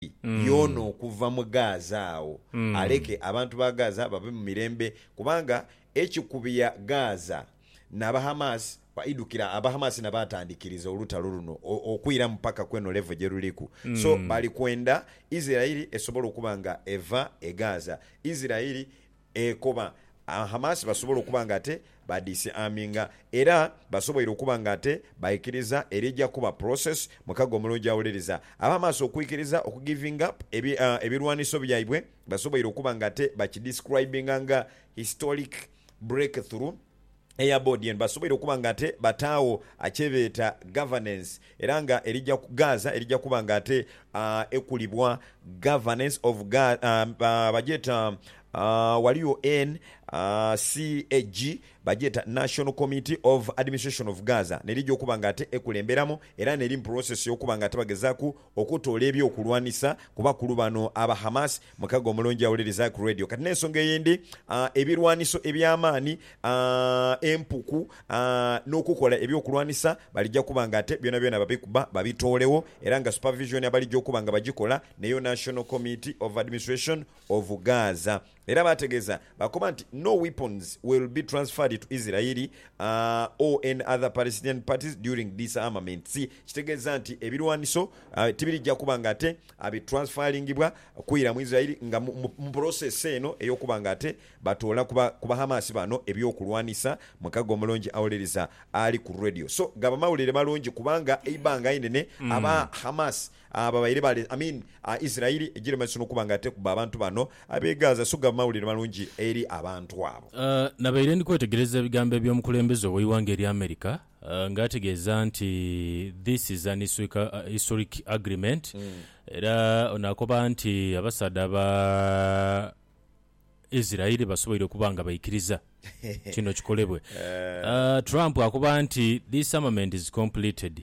Isiraeli yoona okuva mu Gaaza agho, aleke abantu ba Gaaza babe mu mirembe, kubanga ekikubya Gaaza n'Abahamasi kwaidhukira. Abahamasi na baatandikiriza olutalo luno okwiramu paka ku eno levo gye luliku. So, bali kwenda Isiraeli esobole okuba nga eva e Gaaza. Isiraeli Ekoba, Hamas basobola okuba nga ate ba disarminga era basoboire okuba nga ate baikiriza eri eja kuba process mukaga omulungi awuliriza. Aba Hamas okwikiriza oku giving up ebi ebilwaniso byaibwe basoboire okuba nga ate bakidescribinga nga historic breakthrough. eya boodi eno basoboire okuba nga ate bataagho kyebeeta governance era nga erija Gaaza erija kuba nga ate ekulibwa Governance of Gaaza bagyeta ghaligho NCAG bagyeta National Committee of Administration of Gaaza nerija okuba nga ate ekulemberamu era neri mu process y'okuba nga ate bagezaaku okutoola eby'okulwanisa ku bakulu bano aba Hamas. Mukago omulungi awuliriza ku Radio. Kati n'ensonga eyindi, ebirwaniso eby'amaani, empuku, n'okukola eby'okulwanisa balija kuba nga ate byonabyona babikuba babitoolegho era nga supervision abalija okuba nga bagikola n'eyo National Committee of Administration of Gaza. Era baategeeza baakoba nti, No weapons will be transferred to Israel or any other Palestinian parties during disarmaments, kitegeeza nti ebirwaniso tibirija kuba nga ate bitransferingibwa kwira mu Israel nga mu process eno ey'okuba nga ate batoola ku Bahamas bano eby'okulwanisa, Mukago Omulungi awuliriza ali ku Radio. So gaba mawulire malungi kubanga eibbanga einene aba Hamas Ababaire bale, I mean Israeli egire mumaiso nokuba nga ate kuba abantu bano abe Gaza sugaba mawulire malungi eri abantu abo. Nabaire ndi kwetegereza ebigambo ebyomukulembeze oweighanga erya America nga ategeeza nti this is an historic agreement era ono akoba nti abasaadha aba Israeli basoboire okuba nga baikiriza kino kikolebwe. Trump akoba nti this armament is completed.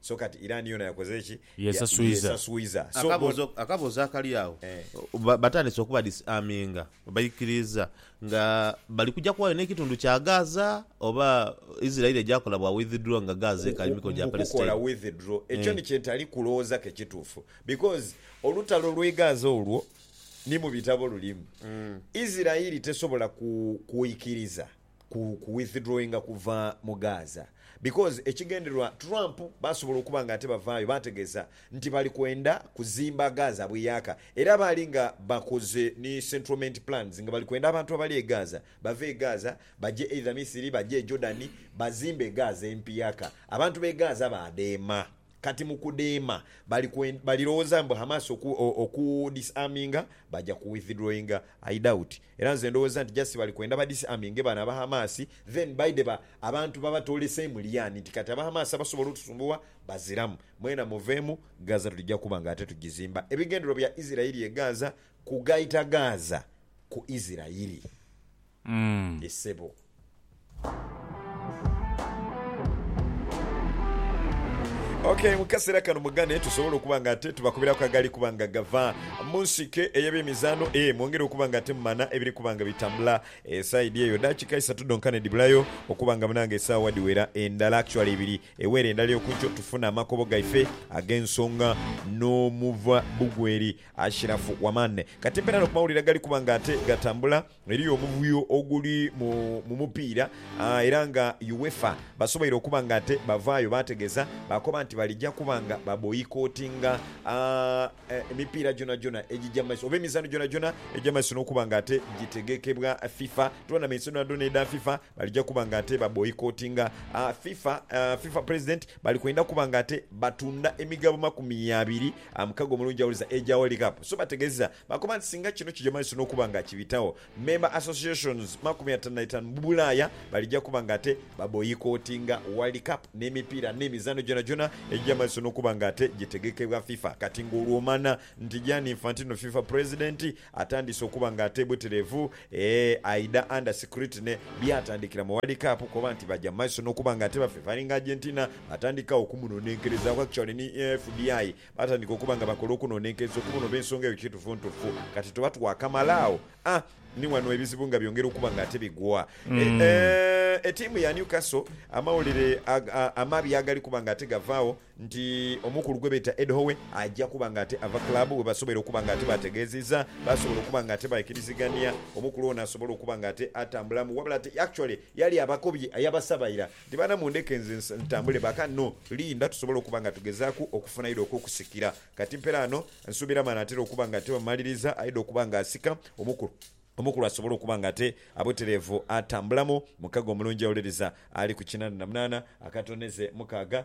So kati Iran yoona yakoze ki? Yesaswiza. Akaboozo, akaboozo akali agho, ba, batandise okuba dis-arminga baikiriiza nga bali kuja kuwayo n'ekitundu kya Gaza? Oba Israel eja kola bwa withdraw nga Gaza ekali mu mikono gya Palestine? Mu kukola withdraw, ekyo ni kye ntali kulowooza ke kituufu. Because olutalo lw'e Gaza olwo ni mu bitabo lulimu. Israel tesobola ku, kuikiriza ku ku withdrawinga kuva mu Gaza because ekigendererwa Trump basobola okuba nga ate bavaayo baategeeza nti bali kwenda kuzimba Gaza bweyaka era baali nga bakoze ni centralment plans nga bali kwenda abantu abali e Gaza bave e Gaza baje either Misiri baje e Jordan bazimbe e Gaza empiyaka abantu b'e Gaza baadheema. Kati mukudema bali kwend balilowoza mbu Hamas oku oku disarminga baja ku withdrawinga I doubt era nze ndowoza nti just bali kwenda ba disarminge bano aba Hamas then baide ba abantu babatole same liyani nti kati aba Hamas abasobola otusumbuwa bazilamu mwena muvemu Gaza tulija kuba nga ate tujizimba ebigendererwa bya Israeli e Gaza kugaita Gaza ku Israeli. e sebo. Ok, mu kaseera kano mugane tusobole okuba nga ate tubakubiraku agali kuba nga gava mu nsike ey'ebyemizaano. E, mwongere okuba nga ate mumana ebiri kuba nga bitambula e saidi eyo. Dakiika isatu dhonka ne dhibulayo okuba nga bnange esaawa dhiwera endala, actually ibiri ewere endala ey'okunkyo, tufune amakobo gaife ag'ensonga n'omuva bugweri Ashiraf Wamane. Kati mpeera no ku mawulire agali kuba nga ate gatambula. Eriyo omuvuyo oguli mu mu mupiira era nga UEFA basoboire okuba nga ate bavaayo baategeeza baakoba nti balija kuba nga baboyikotinga emipiira gyonagyona egija mu maiso oba emizaano gyonagyona egya mu maiso n'okuba nga ate gitegekebwa FIFA. Tournaments dhonadhona edha FIFA balija kuba nga ate baboyikotinga. FIFA FIFA president bali kwenda kuba nga ate batunda emigabo makumi abiri mukaga omulundi gya waliza egya World Cup so bategeeza Bakoba nti singa kino kija mu maiso n'okuba nga kibitagho, member associations makumi atanu na itaanu mu Bulaaya balija kuba nga ate baboyikotinga World Cup n'emipiira n'emizaano gyonagyona egija mu maiso n'okuba nga ate gitegekebwa FIFA kati ng'olwomana nti Gianni Infantino, FIFA president, atandiise okuba nga ate bweterevu ee aidha under scrutiny byatandikira mu World Cup koba nti baja mu maiso n'okuba nga ate ba favoring Argentina batandika okumunonenkerezaaku actually ni FBI Baatandika okuba nga bakola okunonenkereza okuba onoba ensonga eyo kiitufuntufu. Kati tuba twakamala agho. A Ni wano ebizibu nga byongera okuba nga ate bigwa. E Eeh, etiimu ya Newcastle amawulire aga, amabi agali kuba nga ate gavaagho nti omukulu gwe beeta Ed Howe aja kuba nga ate ava club, bwe basobola okuba nga ate baategeezizza, baasobola okuba nga ate baikirizigania omukulu ono asobole okuba nga ate atambulamu. Wabula ate actually yali abakobye yabasaba ira. Nti baana mundheke nze ntambule ba ka no Linda tusobole okuba nga tugezaaku okufuna aidha okw'okusikira. Kati mperaano nsuubira maana atera okuba nga ate baamumaliriza aidha okuba nga asika omukulu, omukulu asobole okuba nga ate abutereevu atambulamu mukago omulungi awuliriza ali ku kinana na munaana akatoneze mukaaga.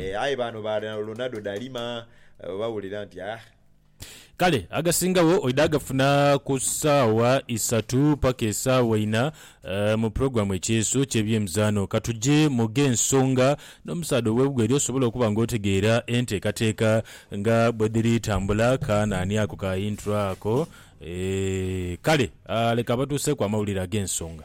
Eh, aye bano ba Ronaldo dalima eh, bawulira nti ah, Kale agasingawo oidha agafuna ku saawa isatu paka esaawa ina eh, mu pulogulaamu Ekyeeso ky'ebyemizaano. Ka tuje mu gh'ensonga n'omusaadha ow'ebweru osobole okuba nga otegeera enteekateeka nga bwe dhiri tambula. Ka naani ako ka intro ako? Eh, kale ah, leka abatuuseeku amawulire ag'ensonga.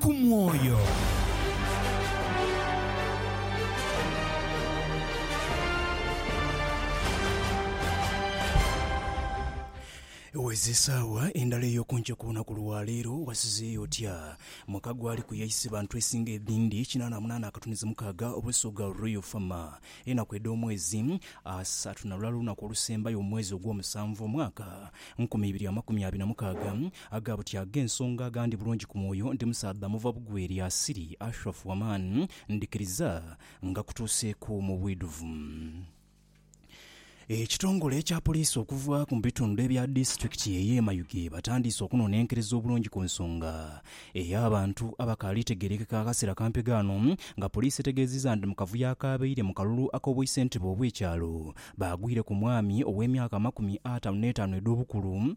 ku mwoyo. Wezi isaawa endala ey'okunkyo ku lunaku lwa leero, wasizeeyo otya? Mwaka gwali ku yaise bantu esinga edhindi kinaana munaana akatunhiza mukaaga obw'esoga Royal Fama. Enaku edh'omwezi, Asatu na lulala olunaku olusembayo mu mwezi ogw'omusanvu omwaka nkumi ibiri amakumi abiri na mukaaga, Aga buti ag'ensonga aga ndi bulungi ku mwoyo, ndi musaadha muva bugwe lya asili, Ashraf Waman, ndhikiriza nga kutuuseeku mu bwidhuvu. Ekitongole ekya poliisi okuva mu bitundu ebya disitulikiti ey'e Mayuge batandiise okunonenkereza obulungi ku nsonga ey'abantu abakaali tegerekeka akasera kampi ghano nga poliisi etegeziza nti mu kavuyo akaabaire mu kalulu ak'obwaisentebe obw'ekyalo baagwire ku mwami ow'emyaka amakumi atanu n'etaanu edh'obukulu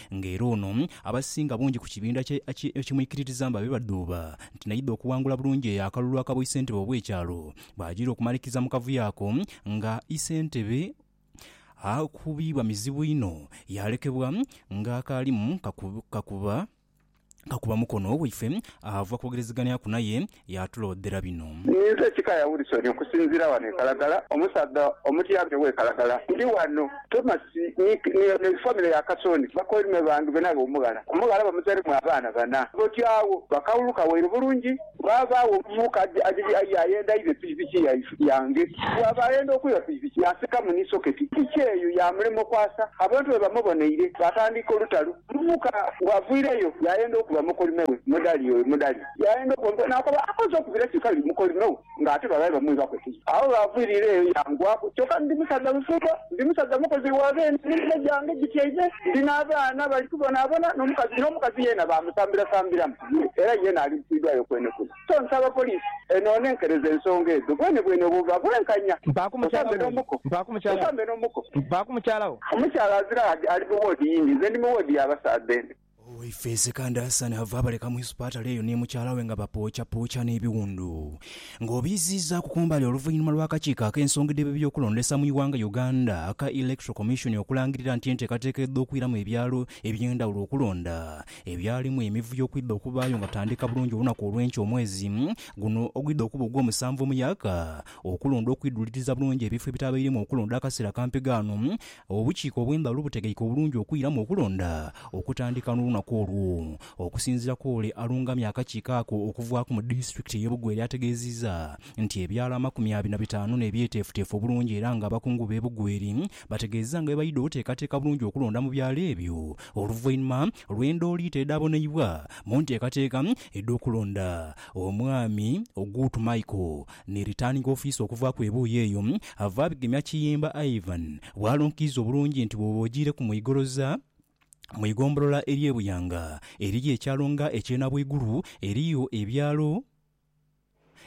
nga era ono abasinga bungi ku kibinda kye ekimwikiririza mba be badhuuba nti naidha okuwangula bulungi eyo akalulu aka bw'isentebe obw'ekyalo bw'ajiira okumalikiza mu kavuyo ako nga isentebe akubiibwa mizibu inho yaalekebwa ng'akaalimu kakuba kakuba mukono waife ava kwogerezeganyaku naye, yaatuloodhera bino. Ninze Kikaya Wilson okusinziira wano e Kalagala, omusaadha omutyabaga ew'e Kalagala. Ndi wano Thomas ni famire ya Kasooni bakoime bange benabe omughala. Omughala bamuzairemu abaana bana. Boti agho bakawuluka waire bulungi. Bw'abaagho omumyuka adhi aye ayenda aibe pikipiki yange, bw'aba ayenda okwiba pikipiki yaasikamu ni soketi. Piki eyo yaamulema okwasa. Abantu bwe bamuboneire, baatandika olutalo. Omumyuka bw'avwireyo, yaayenda okuba mukolime we, Mudhali oyo Mudhali yaayenda okuba mukolime we. Naakoba, akoze okubira ki kale mukolime we ng'ate babaire bamwibaku ekizibu? Agho bw'avwirire eyo yangwaku. Kyoka ndi musaadha musumba, ndi musaadha mukozi wa beene, n'emere gyange gityaime, ndi n'abaana bali kubonaabona, n'omukazi yeena baamusambirasambiramu. Era yeena alibbidwayo kwenekune. So nsaba poliisi enoone nkereze ensonga edho bwenebwene obwo buba bwenkanya. Mpaaku mukyala wo oyo? Mpaaku mukyala wo? Mpaaku mukyala wo? Omukyala azira ali mu woodi yindi, nze ndi mu woodi ya basaadha eno. Owaife Ssekanda Hassan ava abaleka mu isupatale eyo ni mukyala we nga bapoocapooca n'ebiwundu nga obiiziizaaku ku mbali oluvainhuma lw'akakiiko ak'ensonga edh'ebyokulondesa mu iwanga Uganda aka Electoral Commission okulangirira nti enteekateeka edh'okwiramu ebyalo eby'endhawulo okulonda ebyalimu emivuyo okwidha okubaayo nga tandika bulungi olunaku olw'enkya omwezi guno ogwidha okuba ogw'omusanvu omuyaka okulonda okwidhuliriza bulungi ebifo ebitabairemu okulonda akaseera ka mpigaano obukiiko obw'endhawulo butegeike obulungi okwiramu okulonda okutandika n'olunaku olwo okusinziira kw'ole alungamya akakiiko ako okuvaaku mu disitulikiti ey'e Bugweri ategeezizza nti ebyalo amakumi abiri na bitaanu n'ebyeteefuteefu obulungi era nga abakungu b'e Bugweri Bategeezezza nga bwe baidha okuteekateeka bulungi okulonda mu byalo ebyo oluvainhuma lw'endhooliito edhaaboneibwa mu nteekateeka edh'okulonda omwami Ogutu Michael ni Returning Officer okuvaaku ebuuyi eyo ava abigemya Kiyimba Ivan bw'alonkiiza obulungi nti bw'oba ojiireku mu Igoloza mu igombolola ery'e Buyanga eriyo ekyalo nga eky'e Nabwigulu eriyo ebyalo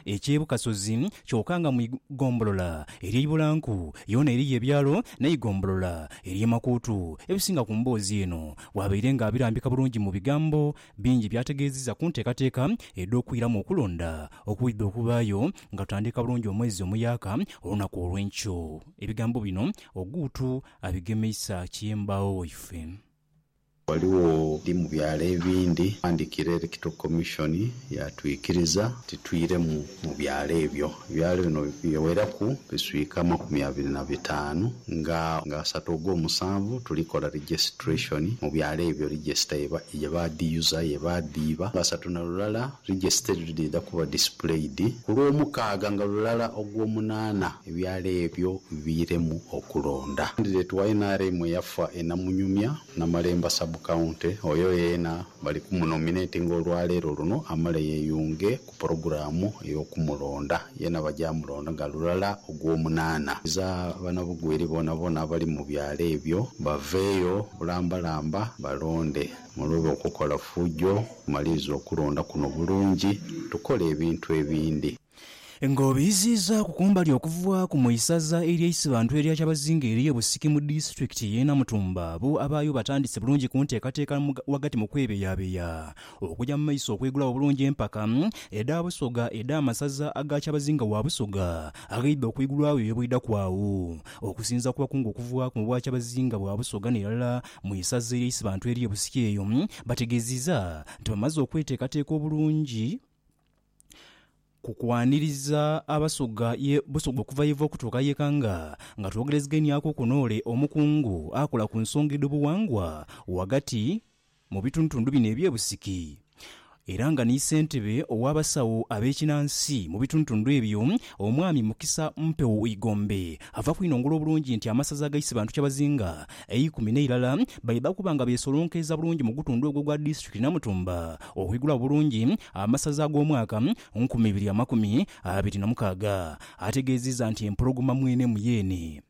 eky'e Bukasozi, kyoka nga mu igombolola ery'e Ibulanku yoona eriyo ebyalo n'eigombolola ery'e Makuutu ebisinga ku mboozi eno. Bwabaire nga abirambika bulungi mu bigambo bingi by'ategeezizza ku nteekateeka edh'okwiramu okulonda okwidha okubaayo nga tutandika bulungi omwezi omuyaaka olunaku olw'enkyo. Ebigambo bino Ogutu abigemeisa ki embaawo waife? Ghaligho ni mu byalo ebindi aghandikira Electoral Commission yaatwikiriza nti twiremu mu byalo ebyo. Ebyalo bino biweraku biswika amakumi abiri na bitaanu nga asatu ogw'omusanvu tulikola registration mu byalo ebyo register ye baadhiyuza, ye baadhiiba. Asatu na lulala register edho dhidha kuba displayed ku Lwomukaaga nga lulala Ogwomunaana. Ebyalo ebyo biiremu okulonda. Candidate wa nrm eyafa e Namunyumya, Namalemba Sub County, oyo yeena bali ku mu nominatinga olwaleero luno amale yeeyunge ku pulogulaamu ey'okumulonda. Yeena baja mulonda nga lulala Ogwomunaana. Iza banabugwiri boonaboona abali mu byalo ebyo baveeyo bulambalamba balonde. Muloobe okukola fujo, mumalirize okulonda kuno bulungi tukole ebintu ebindi. Ng'obiiziizaaku kumbali okuvaaku mu isaza ery'eisibantu erya Kyabazinga eriyo Busiki mu disitulikiti y'e Namutumba, bo abaayo batandise bulungi ku nteekateeka ghagati mu kwebeyabeya okugya mu maiso okwegulawo obulungi empaka edha Busoga edh'amasaza aga Kyabazinga wa Busoga aghaidha okwigulwawo eyo bwidhaku agho. Okusinzira ku bakungu okuvaaku mu bwa Kyabazinga bwa Busoga n'erala mu isaza ery'eisibantu erye Busiki eyo bategeziiza nti bamaze okweteekateeka obulungi, ku kwaniriza Abasoga ye Busoga okuva yeva okutuuka ye Kanga nga twogerezegeniaku kuno ole omukungu akola ku nsonga edho buwangwa wagati mu bitundutundu bino ebye Busiki era nga ni Sentebe owa basawo abe kinansi mu bitundutundu ebyo Omwami Mukisa Mpewo Igombe ava kwinongola obulungi nti amasaza agaise Bantu Kyabazinga eikumi n'eirala baidha kuba nga beesolonkeiza bulungi mu gutundu ogwo ogwa Disitulikiti Namutumba okwigula obulungi amasaza ag'omwaka nkumi ibiri amakumi abiri na mukaaga. Ategeezizza nti empologoma mwenemu y'eni,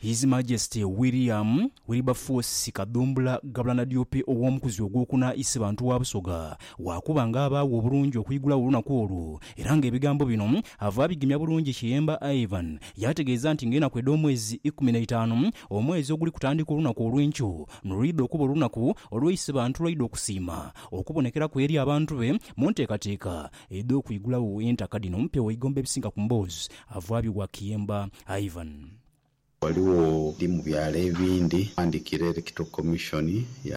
His Majesty William Wilberforce Kadhumbula Gabula Nadiope Ow'omukuzi Ogwokuna Isebantu wa Busoga waakuba nga abaagho obulungi okwigula olunaku olwo era nga ebigambo bino ava abigemya bulungi Kiyemba Ivan yaategeeza nti nga enaku edh'omwezi ikumi n'eitaanu Omwezi oguli kutandika olunaku olw'enkyo nilwidha okuba olunaku olw'eisibantu lwaidha okusiima okubonekeraku eri abantu be mu nteekateeka edh'okwigulagho entaka dhino mpe waigomba ebisinga ku mboozi avwabyo wa Kiyemba Ivan. Ghaligho ni mu byalo ebindi aghandikira Electoral Commission ya.